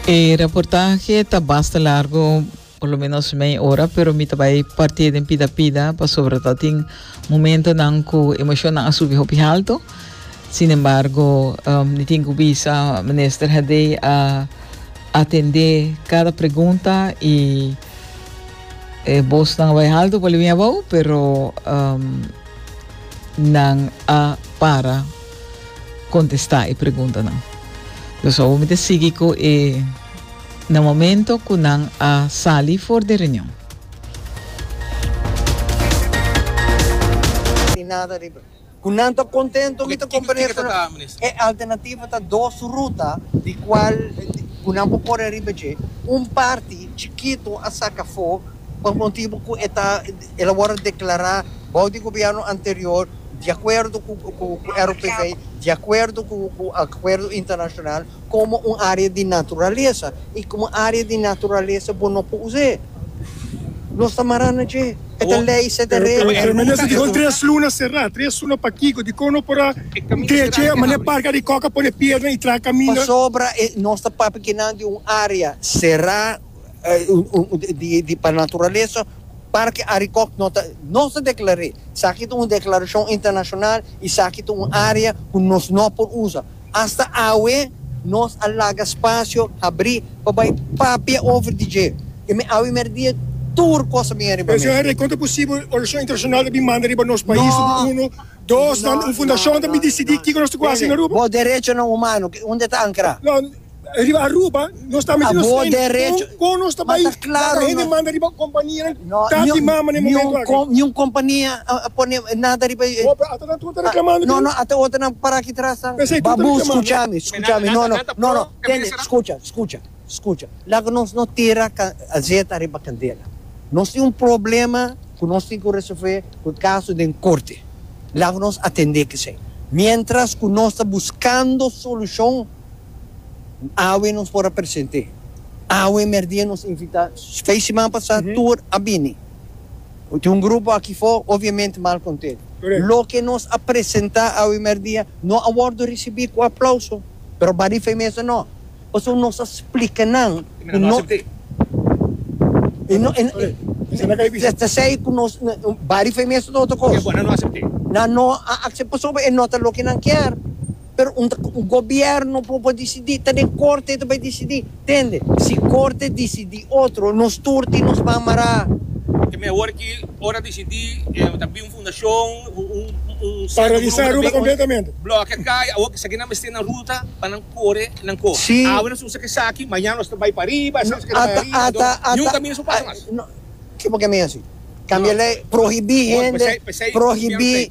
E reportahe ta basta largo, por lo menos mei ora, pero mi ta bai parti'e den pida pida pasobra ta tin momentonan cu emocionnan a subi hopi halto. Sin embargo, um, ni tin cu bisa minister Hadé a atendé cada pregunta y e bosnan a bai halto pa lo bin abao, pero um, nan a para. contesta e preguntanan. Los awor mi ta sigui cu e na momento cu nan a sali for den reunion. Cu nan ta contento mi ta comprende cu e alternativa ta dos ruta di cual cu nan por core riba dje. Un parti chikito a saca for pa motibo cu e ta. El a wòrdu deklará bou di gobièrnu anterior, di akuerdo ku RUPV, di akuerdo ku akuerdo internashonal, komo un área di naturalesa. I komo un área di naturalesa bo no por us'é. Nos ta mará na dje. E ta lei, se ta regla. Pero e minister dihon tres luna será. Tres luna pakiko? Dikon no por a dre dje manera parka di kòk a pone pierna i traha kaminda? Pasobra nos ta papia kinan di un área será. di pa naturalesa Parke Arikok no ta nos ta deklar'é saki ta un deklarashon internashonal i saki ta un área ku nos no por usa. Asta awe nos a laga spasio habrí pa bai papia over di dje i mi awe mèrdia tur kos a bin ariba mi. Señor Rey, kon ta posibel organisashon internashonal ta bin manda riba nos pais su grupo uno, dos nan un fundashon ta bin disidí kiko nos ta ku hasi na Aruba? Bo derechonan humano, unda ta ankrá? Abo derecho, ma ta claro no, no, niun compania a pone nada riba e, no, no, ata otro nan para aki tras tan, babu, scucha mi, scucha mi, no, no, no, no, tende, scucha, scucha, scucha, laga nos no tira azeta riba candela, nos tin un problema cu nos tin cu resolve cu caso den corte, laga nos atende esey, mientras cu nos ta buscando solucion. Awe nos por a presente. Awe merdia nos invita. Fey siman pasa tur a bini. Tin un grupo aki fo obviamente mal content. Loke nos a presenta awe merdia no a wordo ricibi cu aplauso. Pero ba di fey mester no. Pasobra nos a splica nan cu no. E ta sey cu nos ba di fey mester no ta cos. Nan no a acepta pasobra e no ta loke nan kier. pero un ta un gobierno por por disidí ta den corte e ta bai disidí tende si corte disidí otro nos tur tin nos ban mará. Ta mehor ki ora disidí ta bin un fundacion un cierto grupo ta bin bloke a cai awor ki esaki nan mester nan ruta pa nan core nan co awe nos usa ki esaki mañana nos ta bai pa riba esaki nos keda bai ariba enton ni un caminda su pasa mas. Kipo ke mi hasi cambia ley prohibí hende prohibí.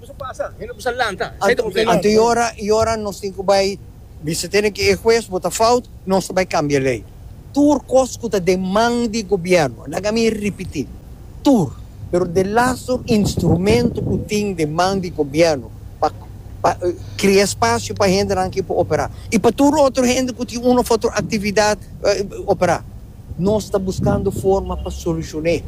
Anto yora yora nos tin cu bay bisa tene cu e hues bo ta fout nos ta bay cambia ley tur cos cu ta den man di gobierno laga mi ripiti tur pero de lazo instrumento cu tin den man di gobierno pa pa cria espacio pa hendenan ki por opera y pa tur otro hende cu tin uno of otro actividad opera. Nos ta buskando forma pa solucion'é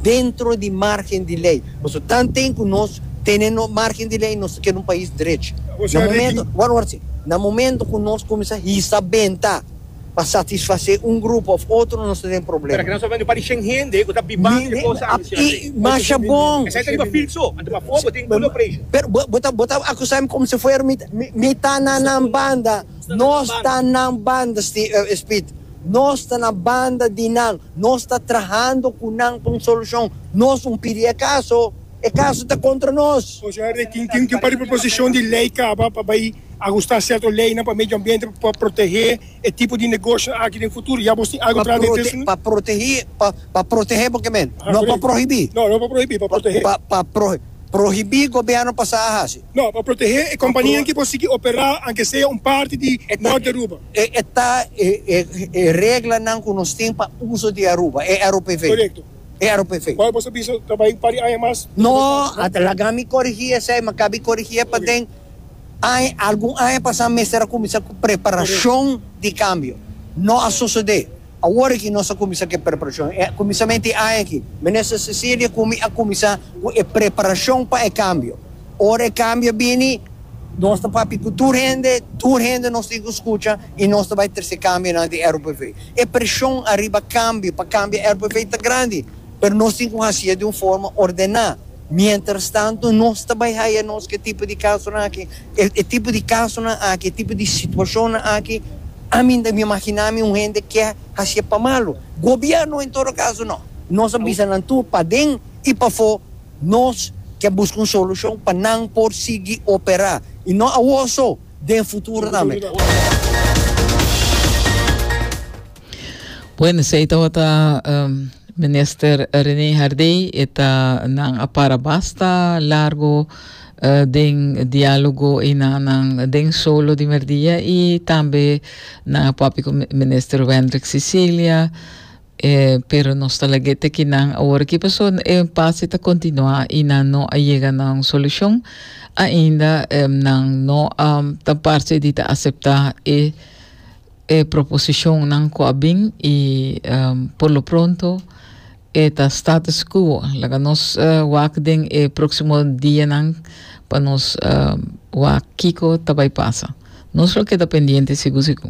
dentro di margen di ley. Paso tanten cu nos tene nos margen di ley, nos ta keda un pais drech. Na momento, ward ward si, na momento cu nos cuminsa hisa benta pa satisfacé un grupo of otro, nos ta den Pero aki probleman. nos ta hablando di un par di shen hende cu ta bibando e cosa aki, señor Rey. Masha bon! Esei ta riba field so, anto pafó bo tin good operation. Pero bo bo ta bo ta acusami como si fuera mi mi mi ta na nan banda. Nos ta nan banda, Ste, eh, Speed. Nos ta na banda di nan. Nos ta trahando ku nan pa un solushon. Nos un pidi e kaso, e kaso ta kontra nos. Oja Herve, tin tin tin par di proposishon di lei kaba pa bai agustá sierto leinan pa medio ambiente pa por protehé e tipo di negoshionan aki den futuro. Ya bos tin algu kla den Tilson? Pa protehé, pa pa protehé bo ke men? No pa prohibí. No, no pa prohibí, pa protehé. Pa pa prohi prohibí gobièrnu pa sa a hasi. No, pa protehe e kompanianan ki por sigui operá anke sea un parti di nort di Aruba. E e ta e e e reglanan ku nos tin pa uso di Aruba, e ROPV. Korekto. E ROPV. Wou boso bisa ta bai un par di aña mas? No, a laga mi korigí esei, mi a kabi korigí e paden. Añ, algun aña pasá mester a kuminsá ku preparashon di kambio. No a sosodé. Awor aki nos a kuminsá ku e preparashon. E kuminsamentu e aña aki, Minister Cecilia ku mi a kuminsá ku e preparashon pa e kambio. Ora e kambio a bini, nos ta papia ku tur hende, tur hende nos tin ku skucha i nos ta bai trese kambionan di RUPV. E preshon ariba kambio pa kambia RUPV ta grandi, pero nos tin ku hasié di un forma ordená. Mientrastantu, nos ta bai haya nos ku e tipo di kasonan aki. E tipo di kasonan aki, e tipo di situashonnan aki, ami ta imaginá mi un hende ke hasié pa malu. Gobièrnu en todo kaso nò. Nos a bisa nan tur paden i pafó nos ke buska un solushon pa nan por sigui operá, i nò awor so, den futuro tambe. Bueno, esei tabata Minister Rene Hardey, e ta nan a para basta largo den diálogo einanan den solo di merdia y tambe nan a papia cu Minister Wendrick Cecilia, pero nos ta lag'é te ki nan awor aki paso e impasse ta continua y nan no a yega na un solucion ainda, nan no a ta parce di ta acepta e E proposishonnan ku a bin i por lo pronto e ta status quo. Laga nos wak den e próksimo dianan pa nos wak kiko ta bai pasa. Nos lo keda pendiente sigu sigu.